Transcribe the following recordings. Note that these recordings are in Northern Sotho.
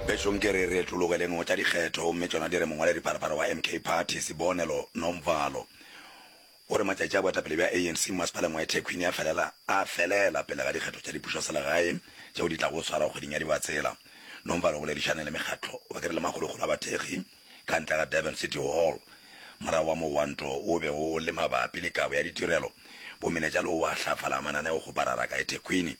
Bešong ke re retologeleng go tša dikgetho gomme tšona di re mongwaladipharapara wa MK Party, Sibonelo Nomvalo, o re matšatši a boetapele bja ANC mo masepaleng wa eThekwini a felela a felela pele ga dikgetho tša dipušoselegae tšeo di tlago go swarwa kgweding ya Dibatsela. Nomvalo o boledišane le mekgatlo wa ke re le magologolo a bathekgi ka ntle ga Durban City Hall morago ga mogwanto wo o bego o le mabapi le kabo ya ditirelo. Bomenetša le wo wa hlafala mananeo go parara ka eThekwini.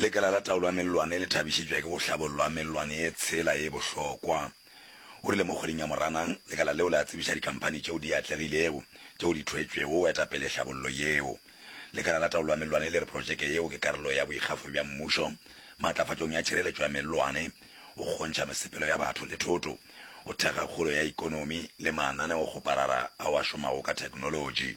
Lekala la Taolo ya Mellwane le thabišitšwe ke go hlabollwa ga mellwane ye tshela ye bohlokwa, o rile. Mo kgweding ya Moranang, lekala leo le a tsebiša dikhamphani tšeo di atlegilego tšeo di thwetšwego go eta pele hlabollo yeo. Lekala la Taolo ya Mellwane le re protšeke yeo ke karolo ya boikgafo bja mmušo maatlafatšong ya tšhireletšo ya mellwane, go kgontšha mesepelo ya batho le thoto, go thekga kgolo ya ekonomi le mananeokgoparara ao a šomago ka theknolotši.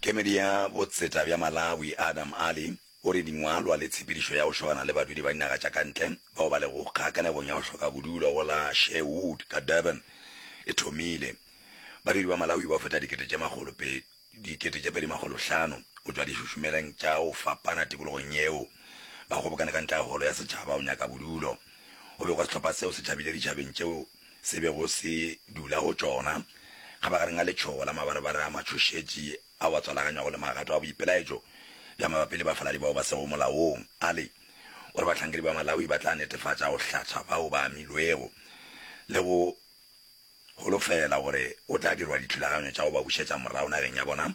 Kemedi ya Botseta bja Malawi, Adam Ali, o re dingwalwa le tshepedišo ya go šogana le badudi ba dinaga tša ka ntle bao ba lego kgakanegong ya go hloka bodulo go la Sherwood ka Durban e thomile. Badudi ba Malawi ba feta dikete tše makgolo dikete tše pedi makgolo hlano go tšwa dišušumeleng tša go fapana tikologong yeo ba kgobokane ka ntle ga Holo ya Setšhaba go nyaka bodulo. Go begwa sehlopha seo se tšhabile ditšhabeng tšeo se bego se dula go tšona, kgabagareng ga letšhogo la mabarabara a matšhošetši ao a tswalaganyago le magato a boipelaetšo bja mabapi le bafaladi bao ba sego molaong, a le gore bahlankedi ba Malawi ba tla netefatša go hlatha bao ba amilwego le go holofela gore go tla dirwa dithulaganyo tša go ba bušetša morago nageng ya bona.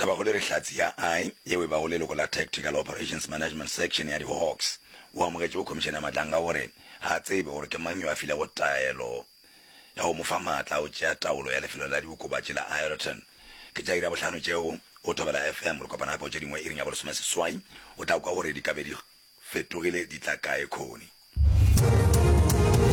Tabakgolo e re Hlatse ya I, yeo e bago leloko la Tactical Operations Management Section ya di-Hawks, o amogetše go Khomišene ya Matlanga gore ga a tsebe gore ke mang yo a filego taelo ya go mo fa maatla a go tšea taolo ya lefelo la diokobatši la Aeroton. Ke tša iri ya bohlano tšeo, go Thobela FM, re kopana gape go tše dingwe iring ya bolesomeseswai, o tla kwa gore di ka be di fetogile di tla kae khoni.